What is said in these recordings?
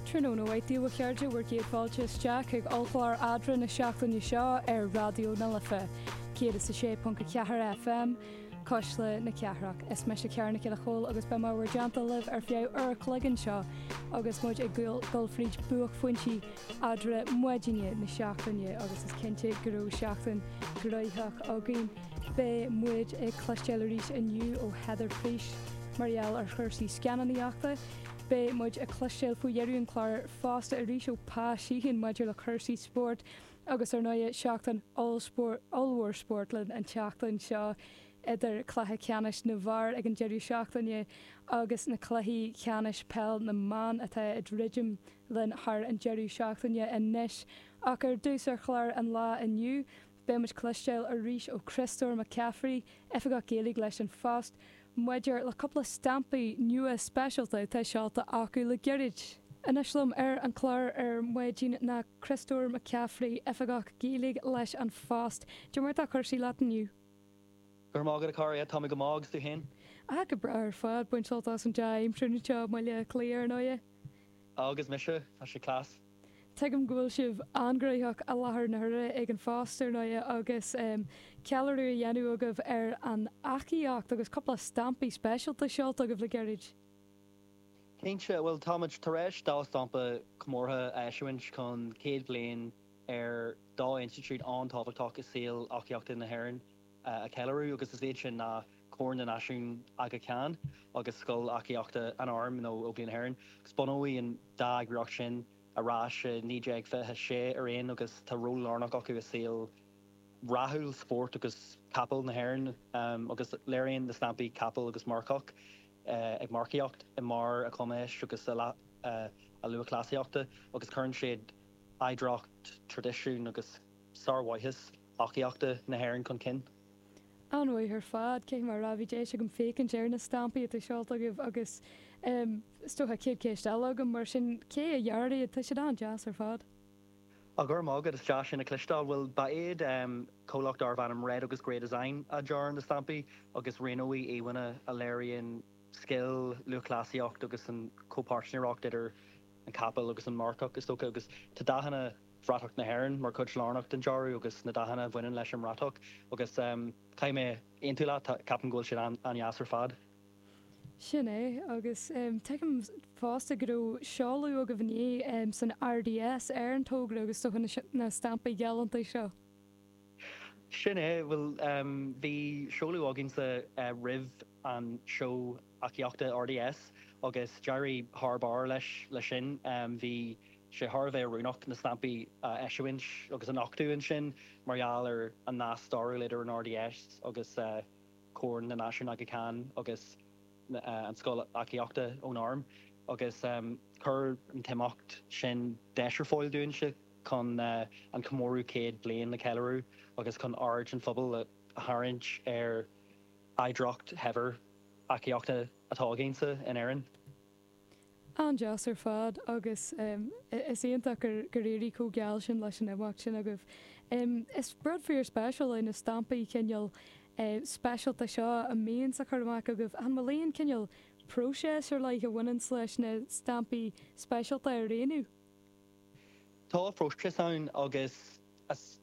Tráthnóna mhaith daoibh a chairde, bhur gcéad fáilte isteach chuig ollchlár Adhmhaidin na seachtaine seo ar Raidió na Life 106.4 FM, Cuisle na Cathrach. Is mise Ciara Nic Giolla Chomhaill agus beidh mé in bhur dteannta libh ar feadh uair a chloig anseo agus muid ag dul fríd buaicphointí eadra maidine na seachtaine agus is cinnte go raibh seachtain ghnóitheach againn. Beidh muid ag cloisteáil arís inniu ó Heather Frisch mar gheall ar chúrsaí scannánaíochta. Beidh muid ag cloisteáil faoi dheireadh an chláir fosta arís ó Pa Sheehan maidir le cúrsaí spóirt agus ar ndóigh seachtain ollmhór spóirt linn an tseachtain seo idir cluiche ceannais na bhfear ag an deireadh seachtaine agus na cluichí ceannais peil na mban atá ag druidim linn thar an deireadh seachtaine. Anois ach ar dtús ar chlár an lae inniu, beidh muid ag cloisteáil arís ó Chríostóir Mac Cafraidh, Oifigeach Gaeilge leis An Phost, maidir le cúpla stampaí nua speisialta atá seolta acu le gairid. Anois liom ar an chlár ar maidin ná Críostóir Mac Cafraidh, Oifigeach Gaeilge leis An Phost. Caidé mar atá cúrsaí leat inniu. Go raibh maith agat, a Chiara. Tá mé go maith, agus tú féin? Ah, go breá ar fad. Baint sult as an dea-aimsir anseo i mBaile Átha Cliath, ar ndóighe. Agus mise. Tá sé class. Tuigim go bhfuil sibh an-ghnoitheach i láthair na huaire ag an phost, ar ndóighe, agus ceiliúradh a dhéanamh agaibh ar an eachaíocht, agus cúpla stampaí speisialta seolta agaibh le gairid. Cinnte, bhuel, táimid tar éis dhá stampa comórtha a eisiúint chun céad bliain ar dhá institiúid an-tábhachtach i saol eachaíochta na hÉireann, a cheiliúradh, agus is iad sin ná Corn na Náisiún Aga Khan agus Scoil Eachaíochta an Airm nó Óglaigh na hÉireann, agus bunaíodh an dá eagraíocht sin ar ais i 1926 araon agus tá ról lárnach acu i saol rathúil spóirt agus capall na hÉireann agus léiríonn na stampaí capall agus marcach ag marcaíocht i mbarr a chumais agus a lúthchleasaíochta agus cuireann siad oidhreacht, traidisiún agus sármhaitheas. eachaíochta na hÉireann chun cinn. An-mhaith ar fad, fé mar a deirim bhí deis agam féachaint ar na stampaí atá seolta agaibh agus, em, is dócha, céad ceist eile agam, mar sin, cé a dhear iad? Tá siad an-deas ar fad. Á, go raibh maith agat, is deas sin a chloisteáil. Bhuel, ba iad, em, comhlacht darbh ainm Red agus Grey Design a dhear na stampaí agus roghnaíodh íomhánna a léiríonn scil, lúthchleasaíocht agus an chomhpháirtnéireacht idir an capall agus an marcach, is dócha, agus tá dathanna. bhratach na hÉireann mar chuid lárnach den dearadh agus na dathanna a bhaineann leis an mbratach agus caithfidh mé aontú leat, ceapaim go bhfuil siad an-deas ar fad. Sin é, agus tuigim fosta go raibh seoladh agaibh inné san RDS ar an togra agus do na stampaí galánta seo. Sin é. Bhuel, bhí seoladh againnsa roimh an seó eachaíochta RDS agus d'éirigh thar barr leis sin. Bhí sé thar a bheith oiriúnach na stampaí a eisiúint agus a nochtadh ansin mar gheall ar an nasc stairiúil idir an RDS agus Corn na Náisiún Aga Khan agus an scoil eachaíochta ón arm agus chuir an t-imeacht sin deis ar fáil dúinn. chun an comóradh céad bliain a cheiliúradh agus chun aird an phobail a tharraingt ar oidhreacht shaibhir eachaíochta atá againn-sa in Éirinn. An-deas ar fad agus is iontach gur éirigh chomh geal sin leis an imeacht sin agaibh. Is rud fíor-speisiúil é na stampaí cineál speisialta seo a bhíonns á chur amach agaibh. An bhfuil aon cineál próiseas ar leith a bhaineann leis na stampaí speisialta a roghnú? Tá próiseas ann agus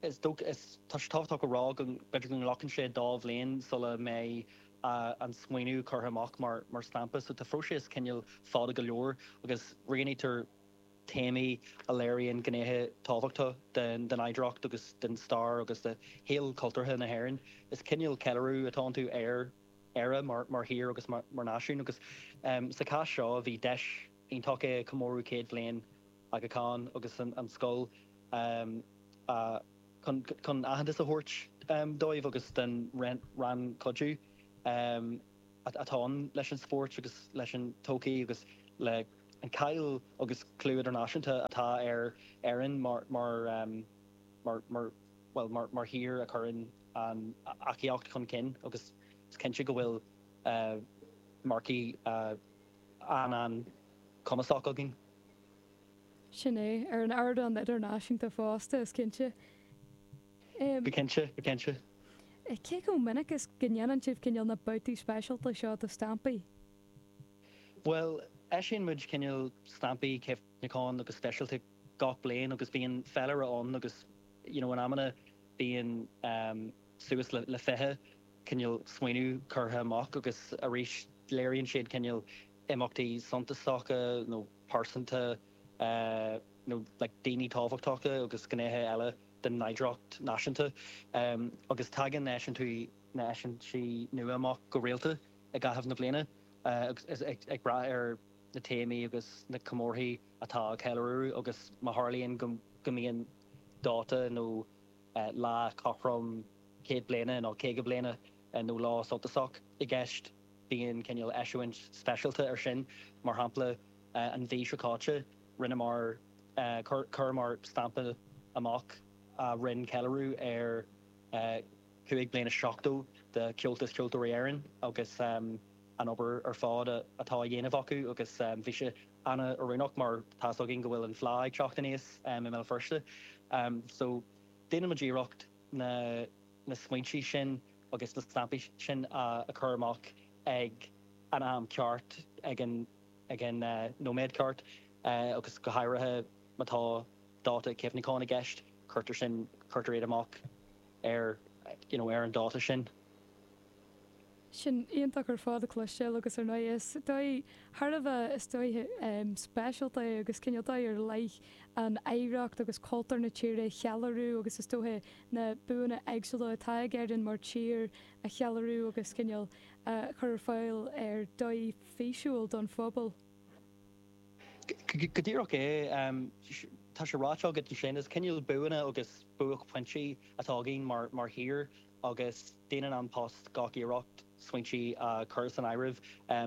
is dócha, is tábhachtach a rá, go mb'fhéidir go nglacann sé dhá bhliain sula mbeidh an smaoineamh curtha amach mar stampa. So tá an próiseas cineál fada go leor agus roghnaítear téamaí a léiríonn gnéithe tábhachtacha den oidhreacht agus den stair agus de shaol cultúrtha na hÉireann. Is cineál ceiliúradh atá iontu ar Éire mar thír agus mar náisiún agus sa chás seo bhí deis, iontach é comóradh céad bliain Aga Khan agus an scoil chun aitheantas a thabhairt dóibh agus don rannchuidiú atá ann leis an spórt agus leis an todhchaí agus leis an cháil agus clú idirnáisiúnta atá ar Éirinn mar, bhuel, mar thír a chuireann an eachaíocht chun cinn agus is cinnte go bhfuil marcaigh an-an-chumasach againn. Sin é. Ar an ardán idirnáisiúnta fosta, is cinnte. Go cinnte, go cinnte. Cé chomh minic is go ndéanann sibh cineál na babhtaí speisialta seo de stampaí? Bhuel, eisíonn muid cineál stampaí cuimhneacháin agus speisialta gach bliain agus bíonn féilire ann agus, you know, in amanna bíonn, suas le fiche cineál smaoineamh curtha amach agus arís léiríonn siad cineál imeachtaí suntasacha nó pearsanta nó daoine tábhachtacha agus gnéithe eile den oidhreacht náisiúnta agus tagann na heisintí nua amach go rialta i gcaitheamh na bliana ag brath ar na téamaí agus na comórthaí atá á ceiliúradh agus má tharlaíonn go mbíonn dáta nó lá cothrom céad bliana nó caoga bliana nó lá suntasach i gceist, bíonn cineál eisiúint speisialta ar sin. Mar shampla, an mhí seo caite, rinneamar, chuireamar stampa amach ag déanamh ceiliúradh ar chúig bliana is seachtó de Chomhaltas Ceoltóirí Éireann agus an obair ar fad atá á dhéanamh acu agus bhí sé an-oiriúnach mar tá's againn go bhfuil an Fhleadh ag teacht aníos i mBéal Feirste so déanaimid iarracht na smaointe sin agus na stampaí sin a chur amach ag an am ceart, ag an nóiméad ceart agus go háirithe má tá dáta cuimhneacháin i gceist, cuirtear sin, cuirtear iad amach ar an dáta sin. Sin iontach ar fad a chloisteáil agus ar ndóigh is dóigh thar a bheith, is dóigh speisialta é agus cineál dóigh ar leith é an oidhreacht agus cultúr na tíre a cheiliúradh agus is dóigh na buanna éagsúla atá ag Éirinn mar tír a cheiliúradh agus cineál a chur ar fáil ar dhóigh físiúil don phobal. Go díreach é. Tá sé ráite agat ansin, is cineál buanna agus buaicphointí atá againn mar thír. agus déanann An Post gach iarracht smaointe a chur san áireamh.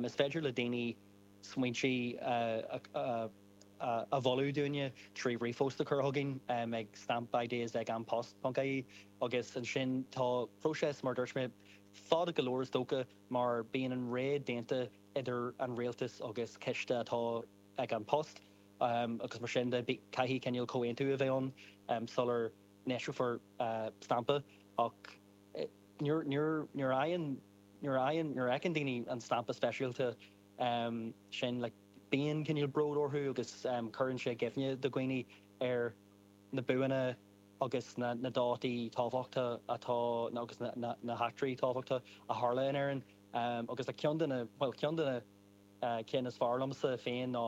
Is féidir le daoine smaointe a mholadh dúinne trí ríomhphost a chur chugainn ag stampideas@anpost.ie, agus ansin tá próiseas, mar a dúirt mé, fada go leor is dócha, mar bíonn an rogha déanta idir an rialtas agus coiste atá ag An Post, agus mar sin de caithfidh cineál comhaontú a bheith ann sula n-eiseofar stampa ach nuair a, nuair a fheiceann daoine an stampa speisialta sin, bíonn cineál bród orthu agus cuireann sé i gcuimhne do dhaoine ar na buanna agus na dátaí tábhachta agus na heachtraí tábhachta a tharla in Éirinn. Agus ceann de na, bhuel, ceann de na cinn is fearr liomsa féin ná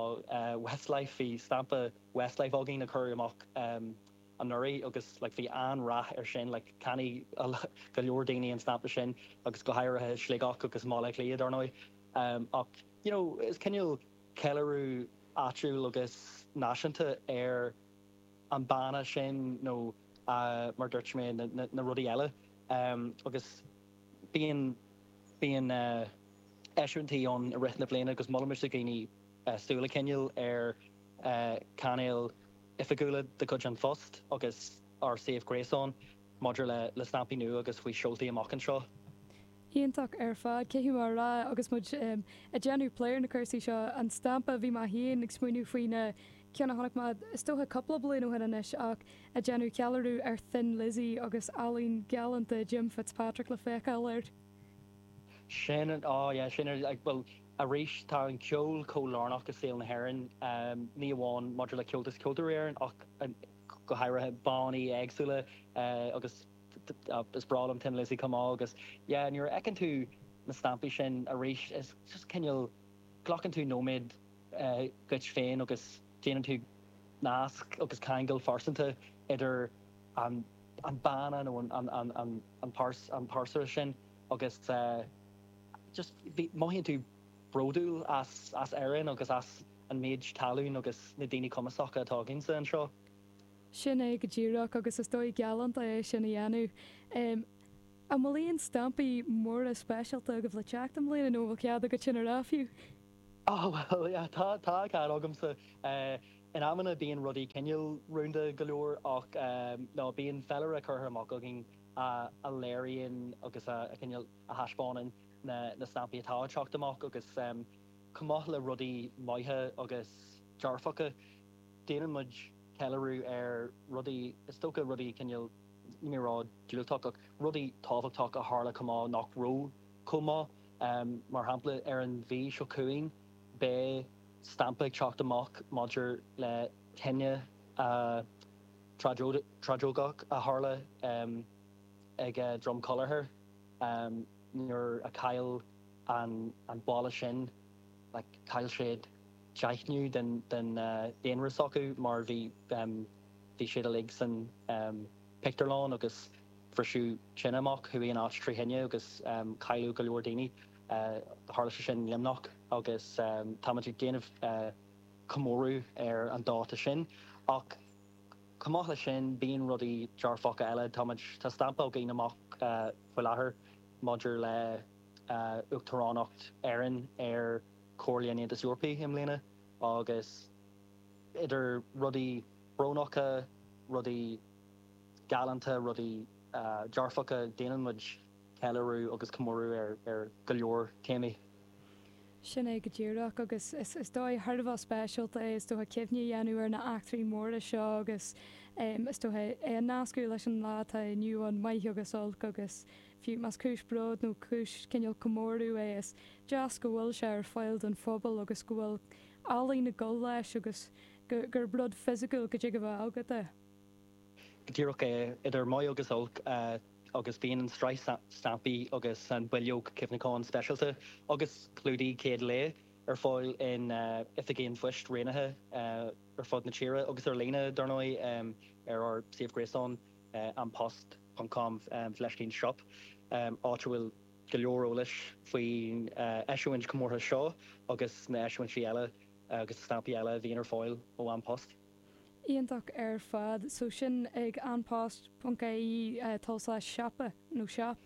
Westlife. Bhí stampa Westlife againn a cuireadh amach. anuraidh agus like bhí an-rath ar sin like cheannaigh go leor daoine an stampa sin agus go háirithe i Sligeach agus i mBaile Átha Cliath dar ndóigh em ach you know is cineál ceiliúradh áitiúil agus náisiúnta ar an mbanna sin nó a mar dúirt mé na na rudaí eile em agus bíonn bíonn eh eisiúintí ann i rith na bliana agus molaimse do dhaoine eh súil a choinneáil ar eh cainéal oifigiúla de chuid An Phost agus ár suíomh gréasáin maidir le stampaí nua agus faoi seoltaí amach anseo. Iontach ar fad. Cé acu, mar a rá agus muid ag déanamh plé ar na cúrsaí seo, an stampa, bhí mé féin ag smaoineamh faoi na cinn a chonaic mé is dócha cúpla bliain ó shin anois ach ag déanamh ceiliúradh ar Thin Lizzy agus ealaín ghalánta Jim Fitzpatrick le feiceáil air. Sin an, á, yeah, sin an, bhuel, arís, tá an ceol chomh lárnach i saol na hÉireann, ní amháin maidir le Comhaltas Ceoltóirí Éireann ach go háirithe, bannaí éagsúla agus, á, is breá liom Thin Lizzy chomh maith agus, yeah, nuair a fheiceann tú na stampaí sin, arís, is just cineál, glacann tú nóiméad dhuit féin agus déanann tú nasc agus ceangal pearsanta idir an. an banna nó an pearsa sin agus just mothaíonn tú bródúil as Éirinn agus as an méid tallainne agus na daoine cumasacha atá againne anseo. Sin é go díreach agus is dóigh galánta é sin a dhéanamh. An bhfuil aon stampaí móra speisialta agaibh le teacht i mbliana nó an bhfuil cead agat sin a rá fiú? Ó bhuel, tá cead agamsa. In amanna bíonn rudaí cineál rúnda go leor ach, bíonn féilire curtha amach againn a léiríonn agus a cineál a thaispeánann na stampaí atá ag teacht amach agus chomh maith le rudaí maithe agus dearfacha déanann muid ceiliúradh ar rudaí, is dócha rudaí cineál, níl mé ag rá diúltach ach rudaí tábhachtacha a tharla chomh maith nach raibh chomh maith, mar shampla ar an mhí seo chugainn, Beidh stampa ag teacht amach maidir le tine thragóideach a tharla ag Drom Collachair nuair a chaill an baile sin, chaill siad deichiú den daonra s'acu mar bhí siad uilig san pictiúrlann agus bhris tine amach, chuaigh an áit trí thine agus cailleadh go leor daoine. Tharla sé sin i Luimneach agus táimid ag déanamh comóradh ar an dáta sin. Ach chomh maith leis sin, bíonn rudaí dearfacha eile. Táimid, tá stampa againn amach faoi láthair maidir le hUachtaránacht Éireann ar Chomhairle an Aontais Eorpaigh i mbliana agus idir rudaí brónacha, rudaí galánta, rudaí dearfacha, déanann muid. ceiliúradh agus comóradh ar go leor téamaí. Sin é go díreach, agus is dóigh thar a bheith speisialta é, is dócha, cuimhne a dhéanamh ar na heachtraí móra seo agus, is dócha, é a nascadh leis an lá atá inniu ann, maith agus olc, agus fiú más cúis bróid nó cúis cineál comórtha é, is deas go bhfuil sé ar fáil don phobal agus go bhfuil ealaín ag dul leis agus gurb rud fisiciúil go dtig a bheith agat é. Go díreach é, idir maith agus olc, agus beidh an tsraith stampaí agus an bhileog cuimhneacháin speisialta agus clúdaigh chéad lae ar fáil in oifigí an phoist roghnaithe ar fud na tíre, agus ar líne, dar ndóigh, ar ár suíomh gréasáin, anpost ponc com fleiscín shop, áit a bhfuil go leor eolais faoin eisiúint chomórtha seo agus na heisiúintí eile agus stampaí eile a bhíonn ar fáil ó An Post. Iontach ar fad. So sin ag An Post, ponc AE, tulslais siopa, nó shop?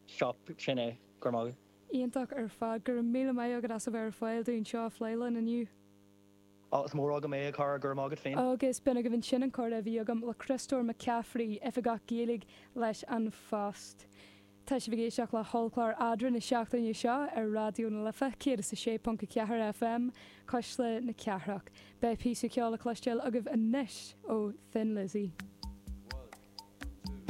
Shop, sin é. Go raibh maith agat. Iontach ar fad. Go raibh míle maith agat as a bheith ar fáil dúinn le seo a phlé linn inniu. Á, is mór agam é, a chara, go raibh maith agat féin. Agus b'in agaibh ansin an comhrá a bhí agam le Criostóir Mac Cafraidh, Oifigeach Gaeilge leis An Phost. Tá sibh ag éisteacht le hollchlár Eadra na seachtaine seo ar Raidió na Life 106.4 FM, Cuisle na Cathrach. Beidh píosa ceoil le cloisteáil agaibh anois ó Thin Lizzy.